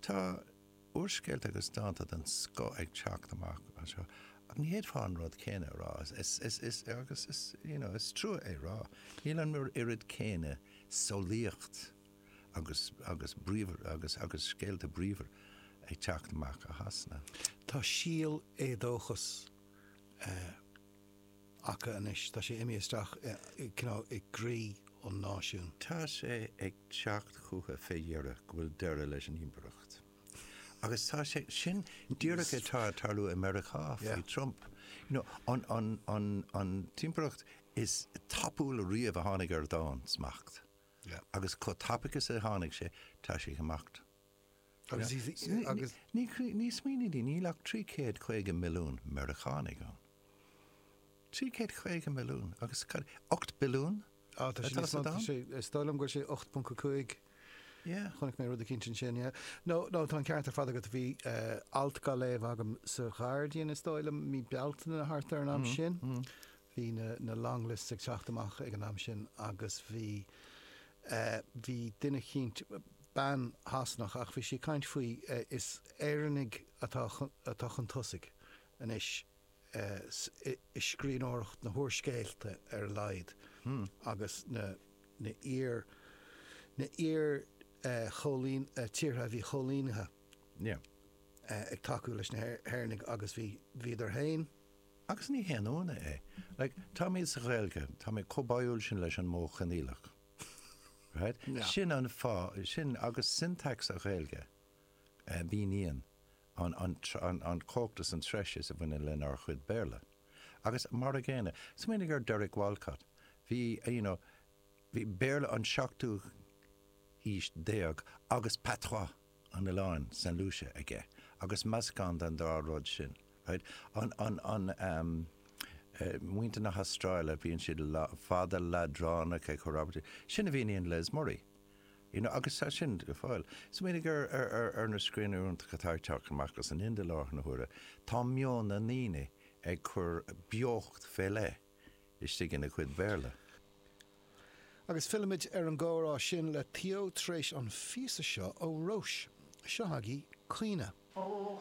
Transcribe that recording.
Tá úrscéalta agus dánta den scoth ag teacht amach anseo, ach ní fhéadfá an rud céanna a rá, is, agus is, you know, is trua é a rá, níl an oiread céanna samhlaíocht agus, agus bríomhar, agus, agus scéalta bríomhar ag teacht amach as Sasana. Tá saghas éadóchas. acu anois. Tá sé imithe isteach i gcroí an náisiúin. Tá sé ag teacht chucu fé dheireadh go bhfuil deireadh leis an Impireacht. Agus tá sé, sin díreach atá ag tarlú i Meiriceá faoi Trump. An impireacht is tapúla riamh a tháinig ar domhan, smacht. Agus chomh tapaidh is a tháinig sé, tá sé ag imeacht. agus. Ní, smaoinigh, níl ach 350 milliún Meiriceánaigh ann. 350 milliún agus cad é, 8 billiún atá sa domhan? Is dóigh liom go bhfuil sé 8.5. Yeah. Chonaic mé rud eicínt ansin, yeah. Nó, nó tá an ceart ar fad agat, bhí alt dhá léamh agam sa Ghuardian, is dóigh liom, mí Bealtaine nó thart ar an am sin, Bhí na long lists ag teacht amach ag an am sin agus bhí, eh, bhí duine eicínt, bean Sasanach ach bhí sí ag caint faoi, eh, is Éireannaigh atá, atá chun tosaigh anois, eh, i scríbhneoireacht na n-úrscéalta ar a laghad agus na, na iar, na iar, eh, chóilín, eh, tíortha a bhí coilínithe, yeah, eh, ag tacú leis na hÉireannaigh agus bhí, bhíodar féin, Agus ní haon ionadh é. Like, táimid sa Ghaeilge, táimid chomh báúil sin leis an modh coinníollach. Right? Yeah. Sin an fáth, sin agus syntax na Gaeilge, eh, a mhíníonn an, an, an, an cumhacht is an treise a bhaineann lenár gcuid Béarla. Agus mar a gcéanna, smaoinigh ar Derek Walcott, bhí, you know, bhí Béarla an seachtú haois déag agus patois. an oileáin, Saint Lucia, aige agus meascán den dá rud sin. Muintir na hAstráile, bíonn siad fada leadránach ina gcuid abairtí. Sin a mhíníonn Les Murray. Agus tá sin go fóill ann. Smaoinigh ar na scríbhneoirí iontacha atá ag teacht amach as an Ind i láthair na huaire. Tá meon na ndaoine ag cur beocht fé leith. istigh ina gcuid Béarla. Agus fillimid ar an gcomhrá sin le Theo tar éis an phíosa seo ó Róis. Seo agaibh 'Caoineadh'. Ó